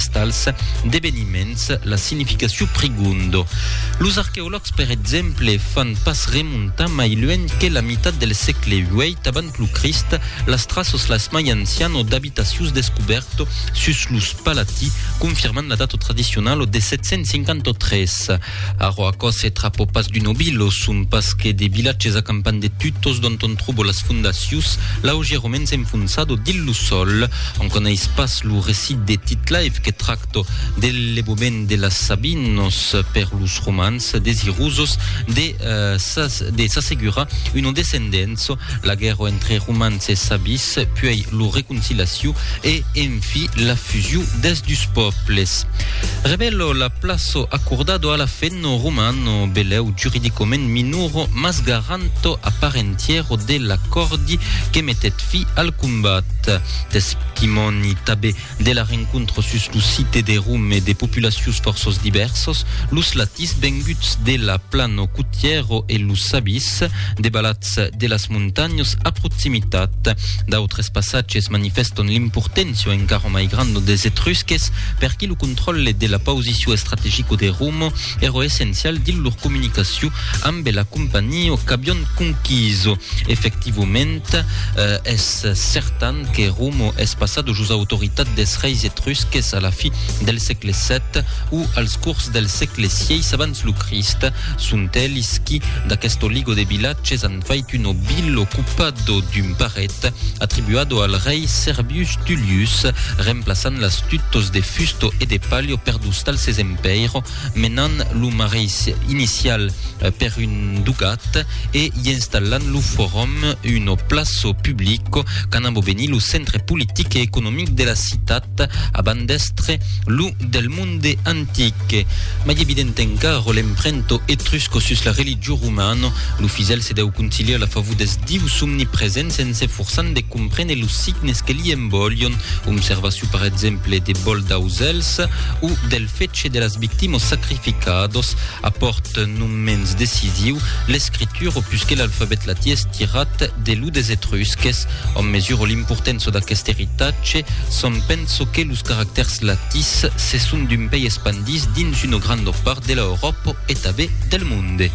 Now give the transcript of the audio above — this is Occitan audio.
tals deveniments la significacion prigondo. Los arqueològs, per exemple, fan pas remontar mai luènh que la mitat del sègle viii avant lo Crist las traças las mai anciano d'abitacius descubèrto sus los Palatí, confirmant la data tradicionalo de 753. Arro aquò se trapo pas d'un obilo, son pas que de vilatges acampant de tutos dont on trobo las fondacius, l'auge romens enfonsado dins lo sol. On coneis pas lo recit de Titlaif que tracto de levobent de las Sabinos per los romans desirosos de s'assegurar uno descendenço, La guèrra entre romans e sabis, puèi lo reconciliaciu e, enfi, la fusiu des dus pòbles. Revelo la plaço accordado a l'afenno romano, beleu juridicament minuro mas garanto a part entièro de l'acòrdi que metèt fi al combat. Testimòni tabé De la rencontre sus lo site de Rum e de populacius forços divèrsos, los latis venguts de la plano cotièro e los sabis de balats de las montanhos a proximitat. D'autres passatges manifèston l'importància encara mai granda des Etrusques per qui lo contròlle de la pausiciu estrategico de Rum Ero essencial dins lor comunicacion ambe la compagnia qu'avion conquiso. Efectivoment, es certan que Romo es passado jos autoritat des reis etrusques a la fi del sègle vii o als cors del sègle vii abans lo Crist. Sont elis qui, d'aquest oligo de vilatges, an fait un obil ocupado d'un paret, atribuado al rei Servius Tullius, remplaçant las tutos de fusto e de palio per dos talses en Pèir, menant lo mareis inicial per un dugat e i installant lo forum, uno plaço public qu'an abobenit lo centre politic e economic de la citat abans d'èstre lo del monde antic. Mai evident encara l'emprento etrusco sus la religion romana, lo fidèl se dèu conciliar la favor dels dius omnipresents en s'eforçant de comprene los signes que li envolion, omservacion per exemple de vòl d'ausèls, o del fetge de las victimas sacrificadas apòrt non mens decisiu l'escritura o pus que l'alfabet latin estirat de lo des Etrusques. Òm mesura l'importança d'aquest eritatge s'òm pensa que los caractèrs latins se son d'un pei espandits dins una granda part de l'Euròpa e tanben del monde.